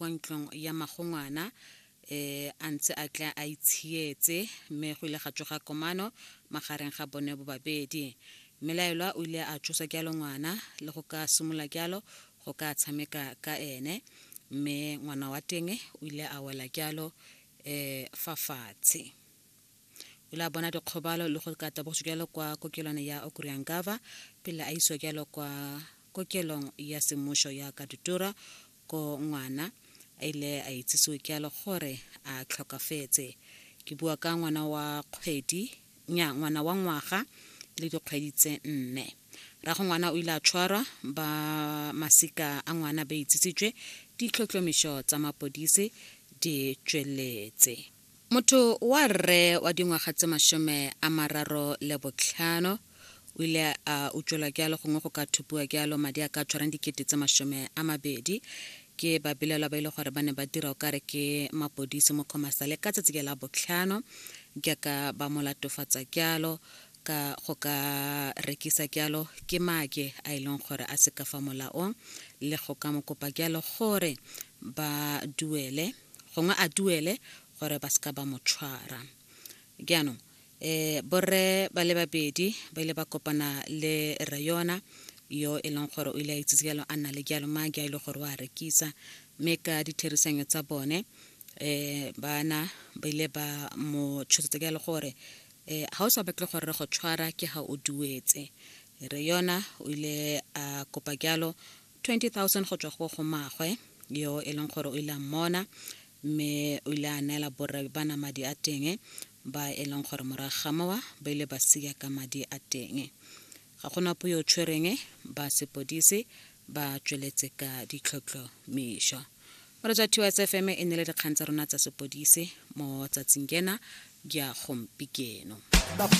kwa ntlong ya magongwana eh a ntse a tla a itshietse mme go ile ga tsoga komano magareng ga bone bobabedi mmelaelwa o ile a tsosa jalo ngwana le go ka simolola jalo go ka tshameka ka ene mme ngwana wa teng o ile a wela jalo um fa fatshe o ile a bona dikgobalo le go ka tabogiso jalo kwa kokelwana ya okuriangava pele a isiwa jalo kwa kokelong ya semmuso ya kaditura ko ngwana a ile a itsisiwe ke alo gore a tlhokafetse ke bua ka ngwana wa kgwedi nya ngwana wa ngwaga le dikgwedi tse nne rago ngwana o ile a tshwarwa ba masika a ngwana ba itsisitswe ditlhotlhomišo tsa mapodisi di tsweletse Motho wa rre wa dingwaga tse masome a mararo le botlhano o ile a utswelwa kealo gongwe go ka thupiwa kealo madi a ka tshwarang dikete tse masome a mabedi ke babelaelwa ba ile gore ba ne ba dira o kare ke mapodisi mo khomasale ka tsatsi ke la botlhano jaaka ba mo latofatsa kealo ka go ka rekisa kealo ke make a e leng gore a se ka fa molaong le go ka mo kopa kealo gore ba duele gongwe a duele gore ba seka ba mo tshwara jaanong um borre ba le babedi ba ile ba kopana le rre yona yo e leng gore o ile a itsitse jalo a nna le jalo madi a e le gore o a rekisa mme ka ditherisanyo tsa bone um bana ba ile ba mo tshosetsa jalo gore um ga o sa batle gore re go tshwara ke ga o duetse re yona o ile a kopa jalo 20,000 go tswa go go maagwe yo e leng gore o ile a mmona mme o ile a neela borre ba na madi a teng ba e leng gore morago ga mowa ba ile ba sia ka madi a teng ga go napo yo o tshwereng ba sepodisi ba tsweletse ka ditlhotlhomišo moretsa ts fm e ne le dikgang tsa rona tsa sepodisi mo tsatsing kena ya gompikeno